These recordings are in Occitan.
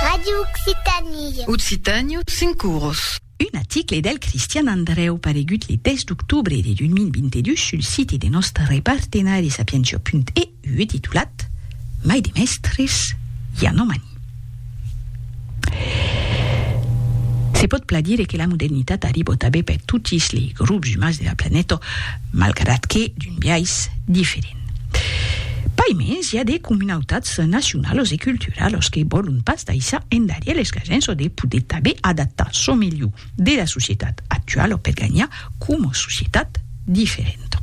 Radio Occitanie. Occitània, cinc oros. Un aticle del Cristian Andrèu paregut le 10 d'octobre de 2022 sul site de nòstre repartenari sapientia.eu e titulat Mai de mèstres, i a nomani. Se pòt plan dire que la modernitat arribò tanben per totis lei grops umans de la planeta, malgrat que d'un biais diferent. Pas mens i a de comunautats nacionalos e culturalos que vòlon pas daissar endarièr les gajens o de poder tabé adaptar çò melhor de la societat actuala per ganhar coma societat diferenta.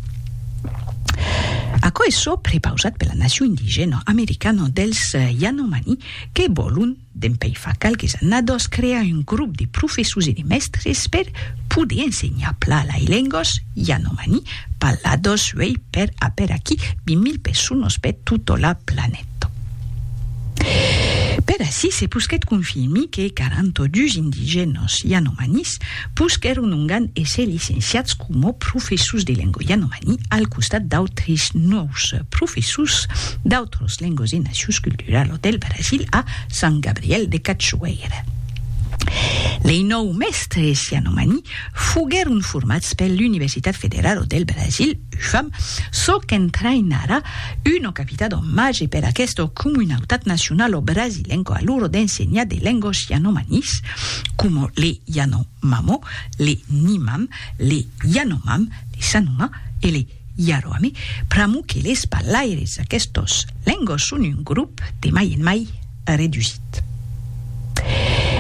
Aquò es çò prepausat per la nacion indigèna americana dels Yanomani que vòlon Dempèi fa qualques annadós crear un grop de professors e de mèstres per poder ensenhar pla lai lengos yanomani parlados uèi per aperaquí 20.000 personos per tota la planeta. Per aicí se posquèt confirmir que 42 indigènos yanomanis Pus qu'èron ongan èsser licenciats coma professors de lengua yanomani al costat d'autres nòus professors d'autras lenguas e nacius culturala del Brasil a Sant Gabriel de Cachoeira. Lei nòu mèstres yanomani foguèron formats per l'Universitat Federala del Brasil, UFAM, çò qu'entraïnarà una capitat en màger per aquesta comunautat nacionala brasilenca a l'ora d'ensenhar de lenguas yanomanis, coma le Yanomamo, le Nimam, le Yanomam, le Sanoma e le Yaroame, pr'amor que les parlaires d'aquestos lengos son un grop de mai en mai redusit.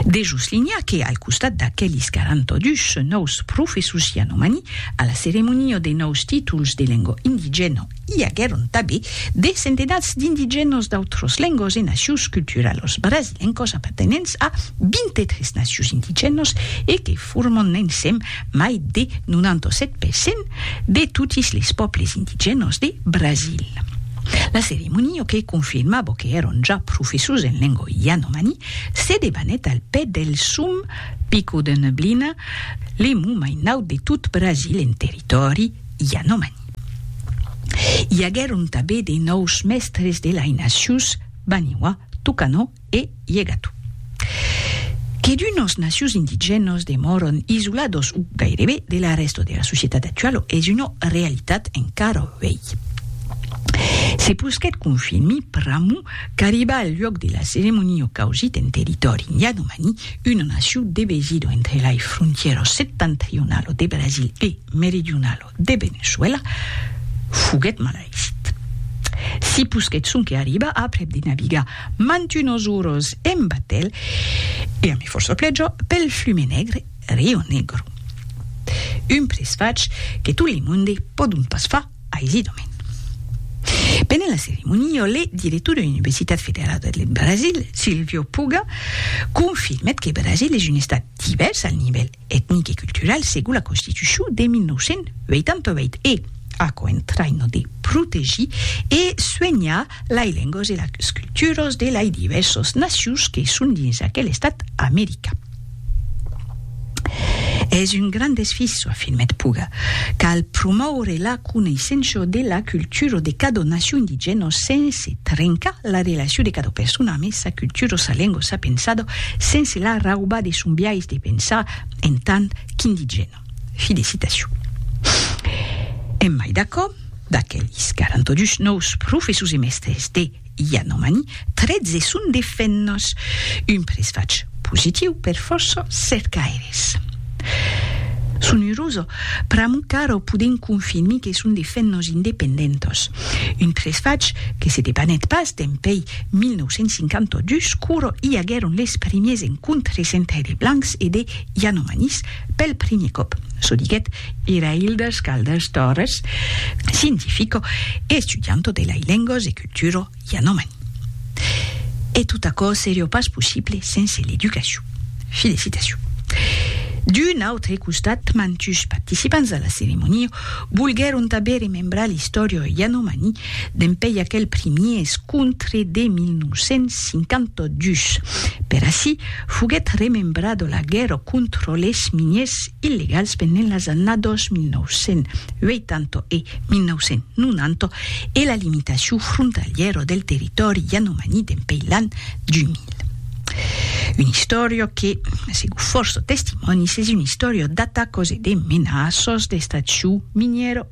De soslinhar que, al costat d'aquelis 42 nòus professors yanomani, a la ceremonia de nòus títols de lengua indigèna I aguèron tanben de centenats d'indigènos d'autros lengos e nacions culturalos brasilencos apartenents a 23 nacions indigènos e que formon ensèm mai de 97 per cent de totis les pòbles indigènos de Brasil. La ceremonia que confirmava que èron ja professors en lenga yanomani se debanèt al pè del sum Pico de Neblina, le mon mai naut de tot Brasil en territòri yanomani. I aguèron tabé de nòus mèstres de lainacius, Baniwa, Tucano e Yegatu. Que d'unos nacius indigènos demòron isolados o gairebe de la rèsta de la societat actualo es una realitat encara uèi. Se posquèt confirmi pr'amor qu'arribà al luòc de la ceremonia o causit en territòri Yanomani, una naciu devesida entre lai frontièra septentrionala de Brasil e meridionala de Veneçuèla, foguèt malait. Si posquèt sonque arribar aprèp de navigar mantunos oros en batèl e a mi fòrça plèja pel flume negre Rio Negro. Un presfach que tot le monde pòdon pas far aisidament. Pendent la ceremonia, le director de l'Universitat Federal deth Brasil, Silvio Puga, confirmèt que Brasil es un estat divèrs al nivèl etnic e cultural segon la Constitucion de 1988 e, aquò entraina de protegir e suenhar lai lengas e las culturas de lai divèrsas nacions que son dins aquel estat american. Es un grand desfís, afirmèt Puga, cal promoure la. coneissenço de la cultura de cada nacion indigèna sense trencar la relacion de cada persona amé sa cultura, sa lenga o sa pensada, sense la raubar de son biais de pensar en tant qu'indigèna. Fi de citacion. Emai d'aquò, d'aquelis 42 nòus professors e mèstres de. Yanomani, 13 son de fennos, un presfach positiu per fòrça cercaires. Son uroso, pr'amor qu'ara podèm confirmir que son de fennos independentos, un presfach que se debanèt pas dempèi 1952 quora i aguèron les primiers encontres entre de blancs e de Yanomanis, Pel primier còp, çò diguèt Irailda Scaldas Torres, scientifico e estudianto de lai lengos e culturo yanomani. E tot aquò serió pas possible sense l'educacion. Felicitacion. D'un autre costat, mantus participants a la ceremonia volguèron tanben remembrar l'istòria yanomani Dempèi aquel primier escontre de 1952, per ací foguèt remembrada la guèrra contra les miniers illegals pendent las annadas 1980 e 1990 e la limitacion frontalièra del territòri yanomani dempèi l'an 2000. Una istòria que, segon fòrça testimònis, es una istòria d'atacas e de menaças d'extraccion minièra.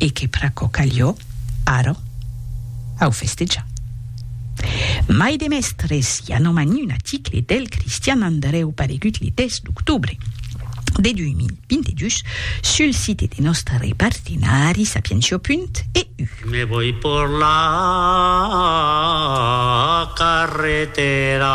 e que pr'aquò calió, ara, au festejar. Mai de mèstres i a nomani un aticle del Cristian Andrèu paregut le 10 d'octobre de 2022 sul site de nòstre partenari sapientia.eu. Me voi por la carretera.